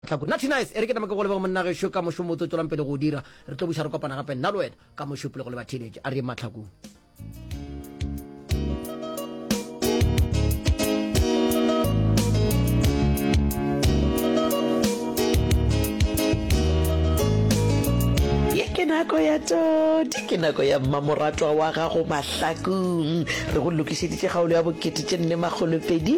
Tlhako, Nna Thinais, e re ke tame ke go leboge monna gešo ka mošomo o tlo tšwelang pele go o dira. Re tlo buša re kopana gape nna le wena ka mošo pele go leba theeletše. A re yeng mahlakong. ke nako ya todi ke nako ya mmamoratwa wa gago mahlakong re go lokišeditše kgaolo ya bokete tše nne makgolopedi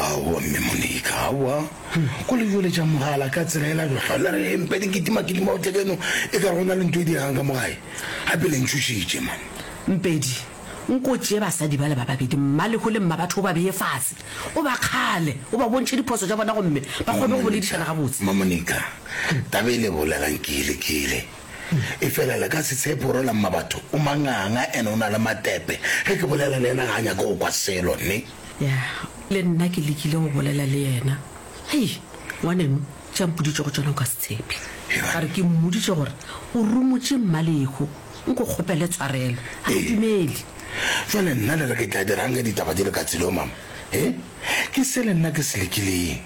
Aowa, Mme Monica, aowa. Go le jole tša mogala ka tsela e la jwa le re empe di kitima kitima o tle keno e ka rona le nto e diragang ka mogae. Hape le ntšhošitše man. Mpedi, nko tšee basadi bale ba babedi, Mmalego le Mmabatho o ba beye fase, o ba kgale, o ba bontšhe diphoso tša bona gomme ba kgone go boledišana gabotse. Mma Monica, taba e le e bolelang ke e lekile. E fela le ka se tshepe gore la mmabatho o manganga ene o na le matepe. Ge ke bolela le yena ga a nyake go kwa selo, nne? Ya, le nna ke lekile go bolela le yena. Hei, ngwaneno, tše a mpoditšego tšona o ka se tshepe. Ka re ke mmoditše gore o rumotše Mmalekgo, nko kgopele tshwarelo. Ga ke dumele. Bjale nna le re ke tla dirang ge ditaba di le ka tsela yeo, mama? He, ke se le nna ke se lekileng.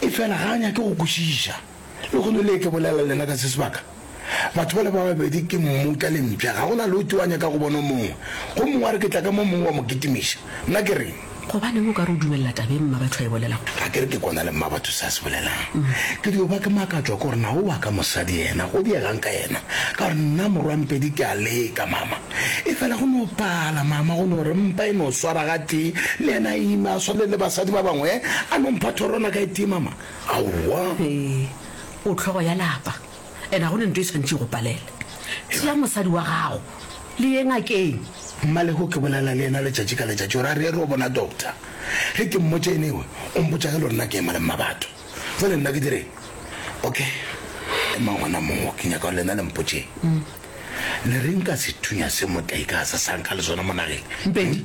E fela ga a nyake go kwešiša. Lehono le ke bolela lena ka se sebaka, batho bale ba babedi ke mmuta le mpša, ga go na le o tee wa nyaka go bona o mongwe, go mongwe a re ke tla ka mo mongwe wa mo kitimiša. Nna ke reng? Gobaneng o ka re o dumelela taba ye Mmabatho a e bolelago? Ga ke re ke kona le Mmabatho se a se bolelang. Ke dio ba ke makatšwa ke gore na o wa ka mosadi yena go diegang ka yena, ka gore nna morwampedi ke a leka mama. Efela go no pala mama, go no re mpa e no swara gatee, le yena a ima a swane le basadi ba bangwe, a no mpha thorwana ka e tee mama. Aowa. Ee, o hlogo ya lapa, and ga go ne nto e swanetše e go palela. Tšea mosadi wa gago le ye ngakeng. Mmalego ke bolela le yena letšatši ka letšatši gore a re ye re yo bona doctor. Ge ke mmotša ene ewe o mpotša ge lorena ke ema le mmabatho. Bjale nna ke direng? Ok, emang gona moo, ke nyaka gore lena le mpotšeng. Le reng ka sethunya se motlaika a sa sa nka le sona mo nageng? Mpedi,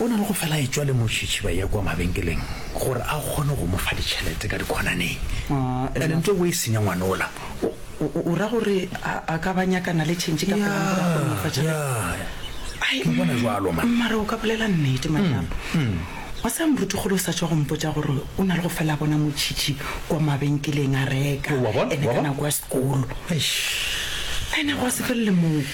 O na le go fela etšwa le mošitšhiba ye kwa mabenkeleng gore a kgone go mo fa ditšhelete ka dikhonaneng. And ntse o e senya ngwana ola. O ra gore a ka ba nyakana le tšhentšhi ka pela gore a kgone go mo fa tšhelete? Ke bona bjalo, mma. Mara o ka bolela nnete, Manyalo. Wa tseba morutikgolo o sa tšwa go mpotša gore o na le go fela a bona motšhitšhi kwa mabenkeleng a reka ene ka nako ya sekolo. Eish! Ene gwa se felele moo.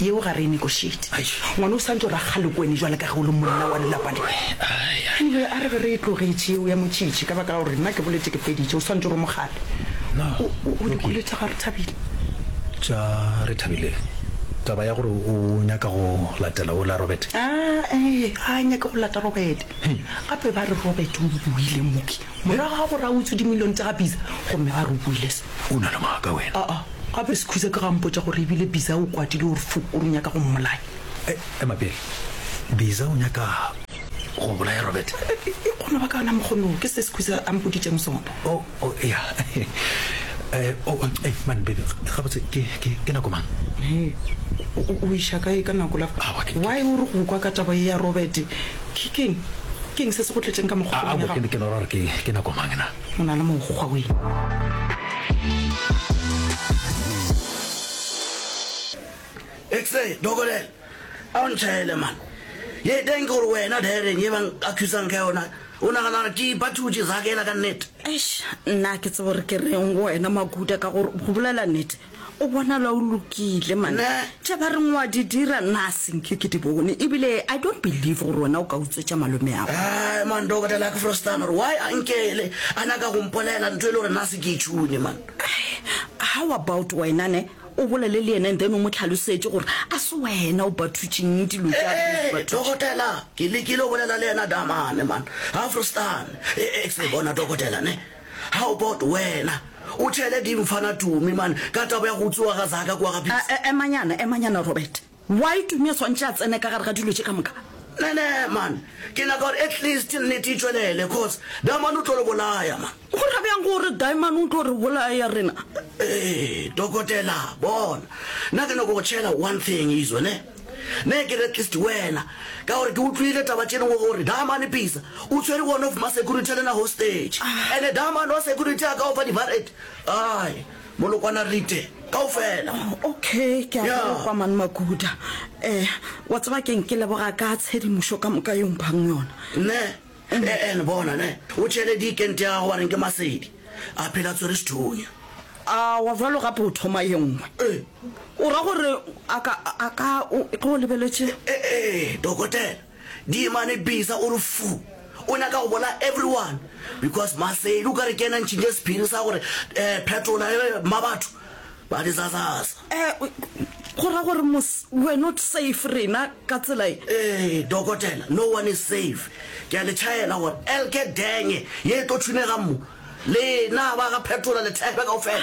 Yeo ga re e negotiate. Ngwana o santse o ra kgalekoene jwale ka ge o le monna wa lelapa le. Anyway, a re ge re e tlogetše yeo ya motšitši ka baka la gore nna ke boletše ke feditše, o santse o re mogale. Na o o di kwele tša ga Rethabile? Tša Rethabile? Taba ya gore o nyaka go latela ola Robert? Aa, ee, a nyake go lata Robert. Gape ba re Robert o o ile Mookie. Morago ga gore a utswe dimilione tša ga Bisa gomme a re o buile se. O na le maaka wena. Aa, gape Sekhuza ke ge a mpotša gore e bile Bisa o kwatile gore fu o re o nyaka go mmolaya. E, ema pele. Bisa o nyaka go bolaya Robert? E, e, e kgona ba ka ona mokgwa noo. Ke se Sekhuza a mpoditšeng sona. O, o, eya. E, o, o, e, man, baby, gabotse ke, ke, ke nako mang? He, o, o, o iša kae ka nako la fa? Aowa, ke, ke. Why o re go kwa ka taba ye ya Robert? Ke keng? Ke eng se se go tletšeng ka mo kgopolong ya gago? Aabo, ke no ra gore ke nako mang na? O na le mokgwa wee. X-ray, Dokotel, a o ntšhaele man. Ye e teng ke gore wena, Darren, ye ba nkathusang ka yona, o nagana gore ke ipathutše, Zakhela, ka nnete? Eish, nna ke tsebo re ke reng go wena Makuta ka gore go bolela nete o bonala o lokile man. Nna? Tše ba reng wa di dira nna a senke ke di bone ebile I don't believe gore wena o ka utswetša malome ago. Ai man Dokota Lucky Frostan gore why a nkele a nyaka go mpolela ntho e le gore nna a se ke e tšhune man. How about wena ne O bolele le yena and then o mo tlhalosetše gore a se wena o bathutšeng dilo tša Ee, batho. dokotela, ke lekile go bolela le yena Damane, man. Afrostan, e, e, se bona dokotela, ne? How about wena? O thele dimfana tumi, man, ka taba ya go utswiwa ga Zaka kua ga A, Pisa. e, emanyana, emanyana, Robert. Why Tumi a swantše a tsene ka gare ga dilo tše ka moka? Nene man ke nyaka gore at least nnete e tšwelele coz Diamond o tlo re bolaya man. Go ra bjang gore Diamond o tlo re bolaya rena? Eeh dokotela bona nna ke nyako go tšhela one thing izwe ne ne ke re at least wena ka gore ke utlwile taba tše dingwe gore Diamond Pisa o tshwere one of ma security le na hostage ene Diamond wa security a ka o fa di barret ai Molokwana Rite, kaofela. Okay, ke a Yeah. kwa man Makuda. Eh, wa tseba keng ke leboga ka tshedimošo ka moka yo mphang yona. Ne, e- ene bona, ne, o tšhele dikente ya gago wa reng ke masedi. A phela tswere sethunya. A wa jwalo gape o thoma ye nngwe. Eh, O ra gore a ka a ka o ge o lebeletše. eh, eh, dokotela, Diemane bisa o re fu. O nyaka go bolaya everyone because Maseli o ka re ke yena a ntšhintše sephiri sa gore eh phetola eh Mmabatho ba dizazaza. Eh go ra gore mos we're not safe rena ka tsela e? Eh Dokotela no one is safe. Ke a le tšhaela gore elke denge ye e tlo thunegang mo, lena ba ga phetola le thebe kaofela.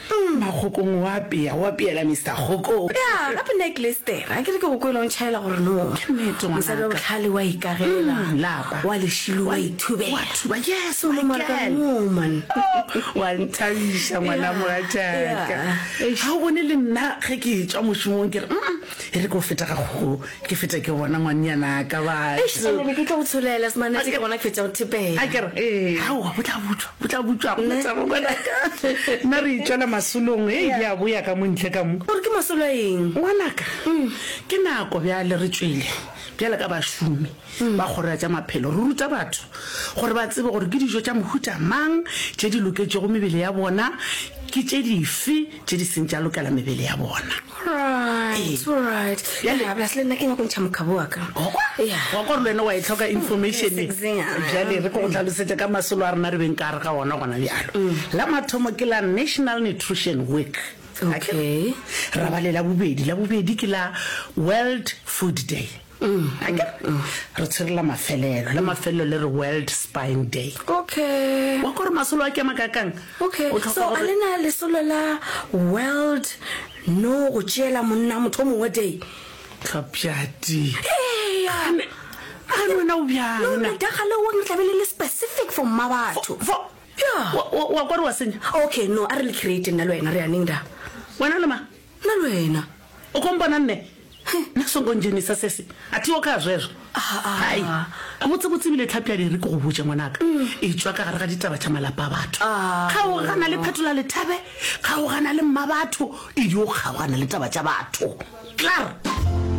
Mma Kgokong o apea, o apeela Mister Kgokong. Ya, gape nna ke Lester, a ke re ke go kwele o ntšhaela gore no. Ke nnete, ngwanaka. Mosadi wa bohlale o a ikagela. Umm, lapa. O a lešilo, o a ithubela. O a thuba, yes, o my girl. Woman. O a nthabiša, ngwana mogatšaka. Ha o bone le nna ge ke tšwa mošomong ke re, umm. E re ke o feta ga kgogo, ke fete ke gona ngwanyanaka batho. Eish, Sane, be ke tlo go tsholela, Semanetse, ke gona ke fetša go thepela. A ke re, ee. Aowa, bo tla butšwa, bo tla butšwa, ga go na taba ngwanaka. Nna re itšwela masolong, hei, di a boya ka mo ntle ka mo. O re ke masolo a eng? Ngwanaka, ke nako bjale re tšwele bjalo ka bašomi ba Kgoro ya tša Maphelo, re ruta batho gore ba tsebe gore ke dijo tša mohuta mang tše di loketšego mebele ya bona, ke tše dife, tše di seng tša lokela mebele ya bona. Alright, Ee. alright. Bjale- Yeah, plus le nna ke nyako ntšha mokgabo wa ka. Yeah. wa gore le wena wa e tlhoka information e. Yes, yeah. bjale re tlo go tlhalosetša ka masolo a rena re beng ka re ga ona gona bjalo la mathomo ke la national nutrition week Okay. ra ba le la bobedi la bobedi ke la world food day Akere? Re tshwere la mafelelo. La mafelelo le re World Spine Day. Okay. Wa kwa gore masolo a kema ka kang? Okay. So, a lena lesolo la World No go tšeela monna motho mongwe day? Tlhapjati. Eya. Gane wena o bjang? No, no, daga le wong tlabe le le specific for mma batho. Fo, fo. Yeah. Wa kwa gore wa senya? Okay, no, a re le create nna le wena re yaneng da. Wena le ma? Nna le wena. O ko mpona nne? Nna songo ndzhenisa sesi. A thiho kha zwezwo. Hai. Gabotsebotse ebile Tlhapi a di ri ke go botše ngwanaka. E tšwa ka gare ga ditaba tša malapa a batho. Kgaogana le Phetola Lethabe, kgaogana le Mmabatho, e di o kgaogana le taba tša batho. Klaar!